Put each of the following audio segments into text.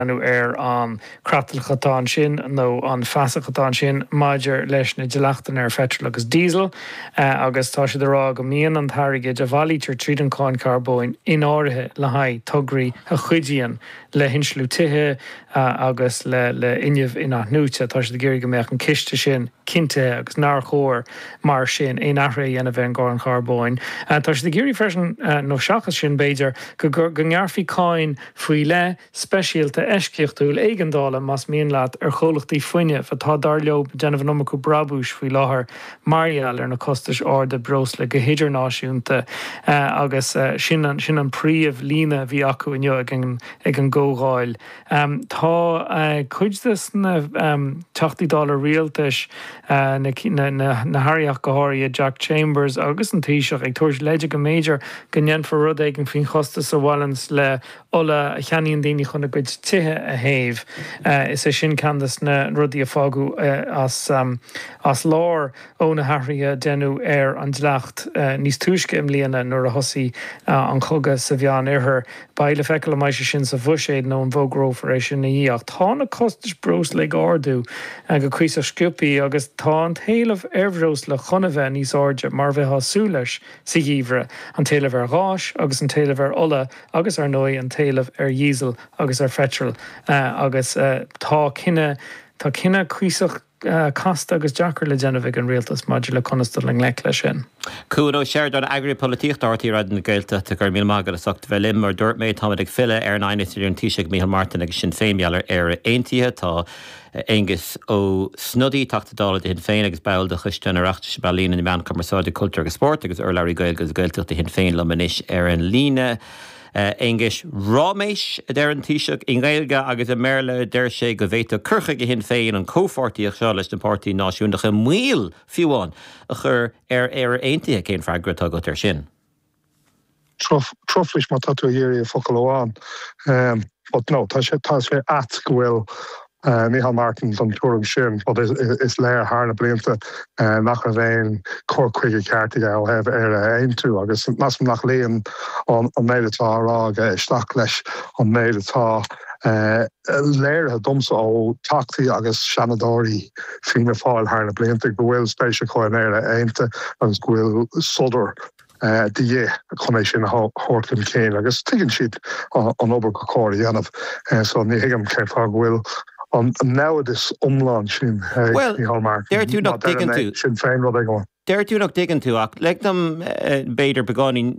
nó ar an chreatlach atá ansin nó an fasach atá ansin maidir leis na dleachtanna ar pheitreal agus diesel agus tá siad ag rá go mbíonn an t-airgead a bhailítear tríd an cháin charbóin in áirithe le haghaidh tograí a chuidíonn le hinsliú tithe agus le fuinneamh inathnuaite. Tá siad ag iarraidh go mbeadh an ciste sin cinntithe agus nár chóir mar sin aon athruithe a dhéanamh ar an gcáin charbóin. Tá siad ag iarraidh freisin, nó seachas sin b'fhéidir, go ngearrfaí cáin faoi leith, speisialta eisceachtúil éigeandála, más mian leat, ar chomhlachtaí fuinnimh, atá, dar leo, ag déanamh an iomarca brabúis faoi láthair mar gheall ar na costais arda breosla go hidirnáisiúnta agus sin an príomh líne a bhí acu inniu ag an gcomhdháil. Tá cuid de na Teachtaí Dála Rialtais, na hAirí ach go háirithe, Jack Chambers agus an Taoiseach, ag tabhairt leid go mb'fhéidir go ndéanfar rud éigin faoin chostas a bhaineanns le ola a cheannaíonn daoine chun a gcuid tithe a théamh. Is é sin ceann de na rudaí a fágadh as lár ó na hathruithe a deineadh ar an dleacht níos túisce i mbliana nuair a thosaigh an cogadh sa Mheánoirthear. Beidh le feiceáil an mbeidh sé sin sa bhuiséad nó an bhfógrófar é sin ina dhiaidh ach tá na costais breosla ag ardú go cuíosach sciobthaí agus tá an t-éileamh ar bhreosla chun a bheith níos airde mar a bheifeá ag súil leis sa gheimhreadh, an t-éileamh ar ghás agus an t-éileamh ar ola agus ar ndóigh an t-éileamh ar dhíosal agus ar pheitreal agus tá cinneadh, tá cinneadh cuíosach casta agus deacair le déanamh ag an Rialtas maidir le conas dul i ngleic leis sin. Cuan Ó Seireadáin, Eagraí Polaitíochta RTÉ Raidió na Gaeltachta, Go raibh míle maith agat as ucht bheith linn. Mar a dúirt mé, táimid ag filleadh ar an aighneas idir an Taoiseach Micheál Martin agus Sinn Féin mar gheall ar Éire Aontaithe. Tá. Aengus Ó Snodaigh, Teachta Dála do Shinn Féin agus ball de choiste an Oireachtais um Ealaíona, na Meáin, Cumarsáid, Cultúr agus Spórt agus urlabhraí Gaeilge agus Gaeltachta do Shinn Féin liom anois ar an líne. Aengus, Ráiméis, a deir an Taoiseach, i nGaeilge agus i mBéarla a deir sé go bhféadfadh cur chuige Shinn Féin an chomhpháirtíocht seo leis na páirtithe náisiúnacha moill, fiú amháin, a chur ar Éire Aontaithe. Cén freagra atá agat air sin? truflais má tá tú ag iarraidh focal amháin but no tá sé tá sé ait go bhfuil Micheál Martin den tuairim sin but is léir thar na blianta nach raibh aon cur chuige ceart aige ó thaobh Éire a aontú agus measaim nach luíonn an méid atá á rá aige isteach leis an méid atá léirithe domsa ó Theachtaí agus Seanadóirí Fianna Fáil thar na blianta go bhfuil spéis acu in Éire aontaithe agus go bhfuil fuadar de dhith chun é sin a thabhairt chun cinn agus tuigeann siad an obair gur chóir a dhéanamh so ní thuigim cén fáth go bhfuil an naimhdeas iomlán sin ag Micheál Martin. Deir tú nach. Do Shinn Féin nó rud éigin. Deir tú nach dtuigeann tú ach lig dom b'fhéidir beagáinín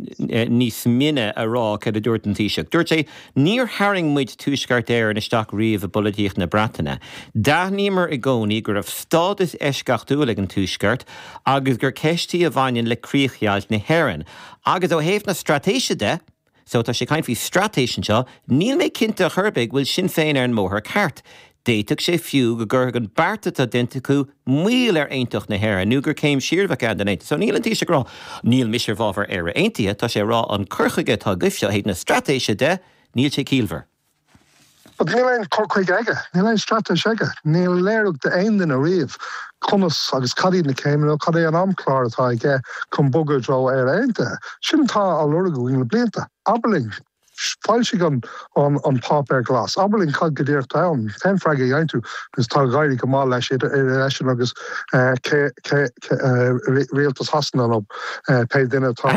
níos mine a rá céard a dúirt an Taoiseach. Dúirt sé Níor tharraing muid Tuaisceart Éireann isteach riamh i bpolaitíocht na Breataine. D'aithníomar i gcónaí go raibh stádas eisceachtúil ag an Tuaisceart agus gur ceist í a bhaineann le críochdheighilt na hÉireann. Agus ó thaobh na straitéise de, so tá sé ag caint faoi straitéis anseo, níl mé cinnte chor ar bith go bhfuil Sinn Féin ar an mbóthar ceart. D'fhéadfadh sé fiú go gcuirfeadh an beart atá déanta acu moill ar aontacht na hÉireann nó gur céim siar a bheadh ann don Aontas. So níl an Taoiseach ag rá 'níl mise i bhfabhar Éire Aontaithe', tá sé ag rá 'an cur chuige atá agaibhse ó thaobh na straitéise de, níl sé ciallmhar'. But níl aon chur chuige aige, níl aon straitéis aige, níor léiríodh d'aon duine riamh conas agus cad iad na céimeanna nó cad é an amchlár atá aige chun bogadh i dtreo Éire Aontaithe. Sin atá á lorg againn le blianta. Abair linn. Foilsigh an Páipéar Glas. Abair linn cad go díreach atá ann, cén freagra a dhéanann tú agus tá ag éirí go maith leis idir eisean agus Rialtas Shasana nó pé duine atá ag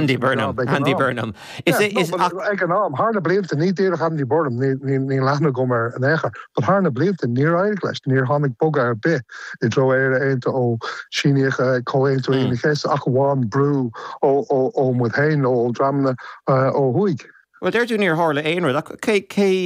an am. Thar na blianta, ní díreach Andy Burnham, níl aithne agam air in aon chor, but thar na blianta níor éirigh leis, níor tháinig bogadh ar bith i dtreo Éire Aontaithe ó síníodh Comhaontú Aoine an Chéasta ach amháin brú ó muid féin nó ó dhreamanna ó thuaidh. Bhuel, deir tú níor tharla aon rud, ach cé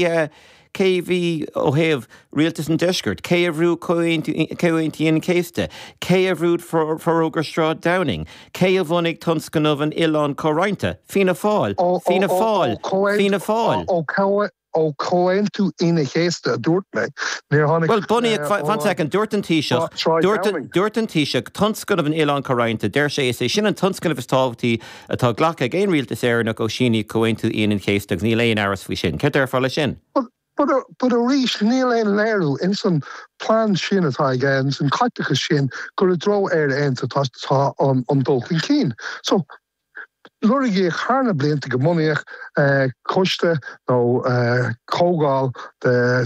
a bhí ó thaobh rialtas an deiscirt? Cé a bhrú Comhaontú Aoine an Chéasta? Cé a bhrú Forógra Shráid Downing? Cé a bhunaigh tionscnamh an Oileáin Chomhroinnte? Fianna Fáil! Fianna Fáil! Fianna Fáil! ó Chomhaontú Aoine an Chéasta, a dúirt mé. Bhuel, bunaíodh, fan sec, dúirt an Taoiseach, dúirt an Taoiseach, tionscnamh an Oileáin Comhroinnte, deir sé, is é sin an tionscnamh is tábhachtaí atá glactha ag aon rialtas Éireannach ó síníodh Comhaontú Aoine an Chéasta agus níl aon aimhreas faoi sin. Céard déarfá leis sin? But, but arís níl aon léiriú ins an plean sin atá aige, ins an caiteachas sin, gur i dtreo Éire Aontaithe atá an dul chun cinn. So, Lorgaíodh thar na blianta go mbunófaí coiste nó comhdháil de.